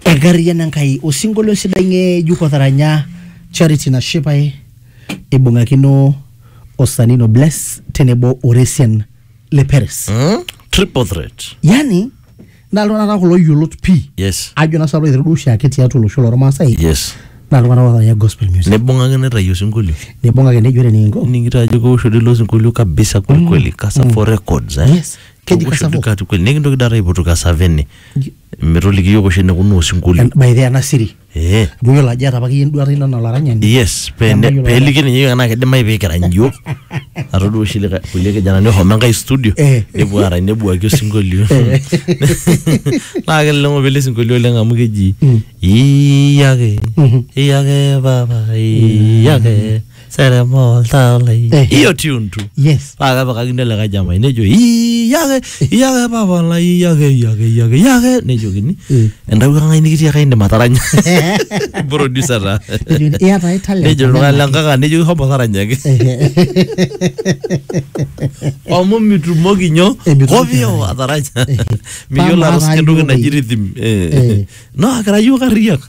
enkariano enkai osinkolio sidai ng'ejuk otaranya charity nashipae eibung'akino osanino bless tenebo oresian le peres Hmm? Triple threat. yani naa iltung'anak taata kulo yiolot pii Yes. ajo naa sababu aiteru duo oshiake tiatua olosho lormaasai Yes. naa iltung'anak otaranya gospel music Nibung'aki nitayu osinkolio. nibung'aki nejo ore nikinko Ning'ita ajo keoshori ilo sinkolio kabisa kweli kweli. Kasa for records eh. Yes. Keji Ewosho Kasavo. Dukat kweli nikintoki data aipotu kasavene metoliki yiok oshi enekunaa osinkolio En- by the way, ena siri eh duo yiolo ajo eeta apa akeyie enduata ino anaa olaranyani yes pene- Nemayiolo peliki ninye yiok enaa kidimayu pikirany yiok atodua oshi lika- kulie kijanani ohomo enkae studio Eh. nepuo arany nebuaki osinkolio Eh. naa keleleng'o pele sinkolio oleng amu keji iyake iyake papa iyake serema oltaa lai Eh. hiyo tune tu yes paa kepikakini ele kae jamai nejo iyake iyake papa lai iyake iyake iyake iyake nejokini Eh. entawuo kang'ai nikitiaka indim ataranya producer taa Ejo, iyata ai talent nejo iltung'ani le nkaka nejoki homo taranyaki amu mitumoki nyo Eh, mitumoki kovio ataranya miyiolo Pama atusuja entoki atayiolo. naji rhythm Eh. Eh. no akira yiok arriyiak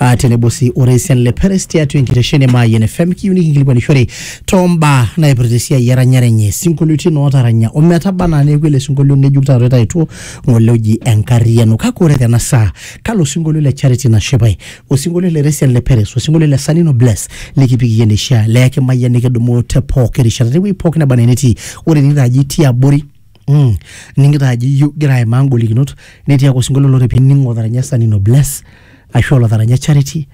uh, tenebo sii orais le Peres tiatua enkitesheni e Mayian FM kiyieu nikinkilikuanishore too mbaa naipirta esiai eranyare enye isinkolioitin ootaranya ometaba anaa neeku ele sinkolio ng'ejuk taata oitaituo ng'ole oji enkarriyiano kake ore tena saa kalo sinkolio le Charity Nashipae osinkolio le Resian le Peres osinkolio le Sanino Bless likipik iyie neishia leyaki Mayian nikidumu te pooki rishata tewueji pooki neba enaa enetii ore ening'ito ajo itii abori Mm. ning'ita ajo iyieu igira aimaa ngolikinot netii ake osinkolio lore pining otaranya sanino bless ashu olotaranya charity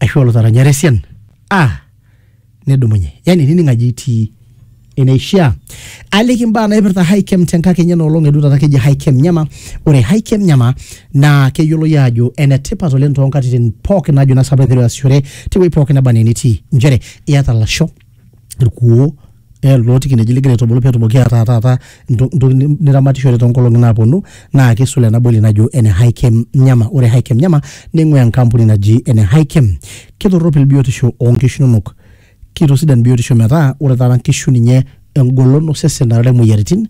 ashu olotaranya resian ah nidumunye yani nining ajo itii eneishia aliki imbaa naipirta hikem tenkakenya enoolong edu taata keji hikem nyama ore hikem nyama naa keyioloi aajo enetipat oleng toonkatitin pookin najo naa sapa aiteru aasishore tewueji pookin naba anaa enetii nchere iyata lasho irkuoo loo nkineji lingira aitubulu pee etumoki ataa taata entoki niramatishore too nkolong'i naapuonu naa kisul ena boli najo ene Hikem Nyama. Ore Hikem Nyama ning'ua enkampuni naji ene Hikem. Kitoropil biotisho oo nkishu inonok, kitosidan biotisho metaa ore taata nkishu ninye engolon osesen naarare imoyiaritin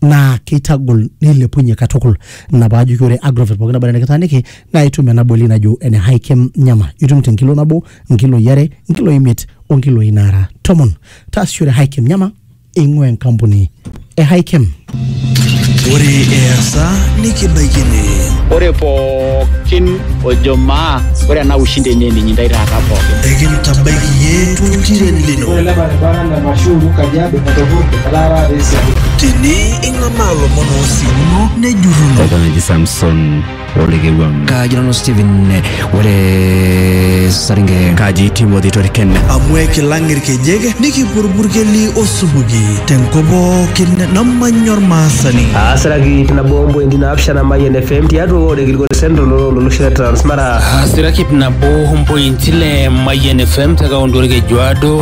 naa keitagol neilepunye katukul ina paajoki ore agrovet pookin naba nikitaaniki naa itum ena boli najo ene hikem nyama itum te nkilo nabo nkiloi are nkiloi imiet o nkiloi naara tomon taasishore hikem nyama eing'ua enkampuni e hikem Ore easa nikibaikini. ore pookin ojo maa ore ena ushindi enye ninyi ntae taata pookin Ekintabaiki iyie toltiren lino. Ore ele baribara Mashuuru Kajiado Matopor Kataara Esiadi. Tini ing'amaa lomon oosimuno nejurruno. Eton eji Samson olekewuam. Kaji nanu Stephen ore Saringe. Kaji Timothy Toriken. Amu ekilang irkejek nikipurburkeli osupuki tenkop pookin namanya ormaasani. Aasiraki ip nabo ompointi naapishana Mayian FM tiatua ward e Gilgol Central olosho le Transmara. Aasiraki ip nabo ompointi ile Mayian FM te kaunti Olkejuado.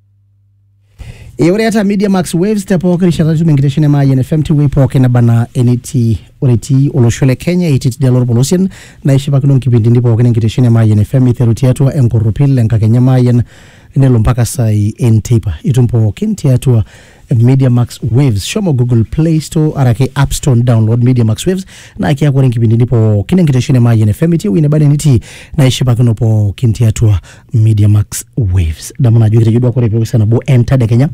Eh, ore eeta media max waves te pooki rishata nitum enkitesheni e Mayian FM tewuei pooki neba anaa enetii ore etii olosho le Kenya etii tidialo orpolosien naishipakino nkipindini pookin enkitesheni e Mayian FM iteru tiatua enkorropil enkakenya e Mayian nelo mpaka saai enteipa itum pookin tiatua Media Max Waves. Shomo Google Play Store araki App Store download Media Max Waves na kiaku ore nkipindini pookin enkitesheni Mayian FM itii ewueji neba nitii naishipakino pookin tiatua Media Max Waves. Damu najo kitejo duo ore peosa nabo entadekenya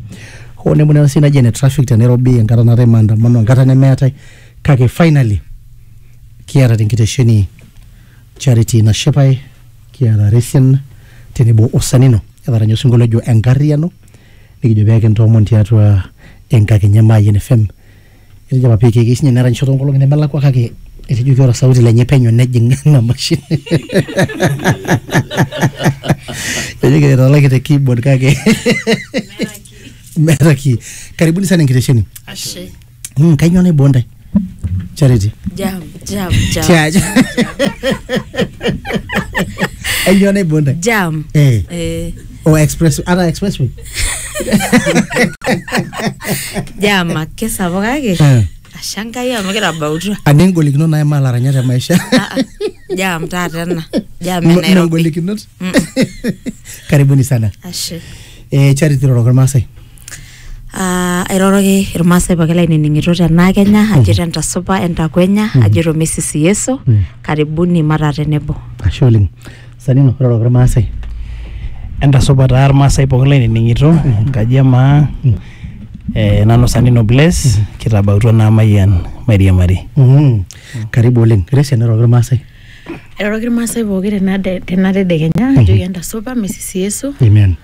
hoo nemunena sii naji ene traffic te Nairobi enkata naatae maandamano enkata nemeetae kake finally kiata tenkitesheni Charity Nashipae kiata Resian tenebo Osanino etaranya osinkolio ojo enkarriyiano Nikijo pee kintoomon tiatua enkakenya e Mayian FM. Etejo apa PK keyieu sinye neranyisho too nkolong'i nemelakua kake etejoki ore osauti lenye penyo nejing ina mashini. Etejo kira italaki te keyboard kake meeta kii. Karibuni sana enkitesheni. Ashe. Mm, kainyoo naiboo ntae? Charity. Jam, jam, jam. Tiaja. Kainyoo naiboo ntae? Jam. Eh. Eh, O express ara expressway. jam ake sapuk kake Eh. ashe Enkai amu kitabautua. Ane ngolikinot naimaa laranyat te maisha. Ah, ah. Jam taata ena. Jam e Mme Nairobi. ngolikinot. Mm. Karibuni sana. Ashe. Eh, Charity roroko Irmaasai. Ah, airoroki irmaasai pooki lainining'ito tenaa kenya ajito entasupa entakwenya ajito misisi yeso karibuni mataa tenebo ashe oleng sanino iroroki irmaasai entasupa taa irmaasai pookin lainining'ito enkaji emaa eh, nanu sanino bless kitabautua naa mayian mairiamari Mhm. karibu oleng resian iroroki irmaasai airoroki irmaasai pooki tena de- tena tedekenya ajoki entasupa misisi yeso amen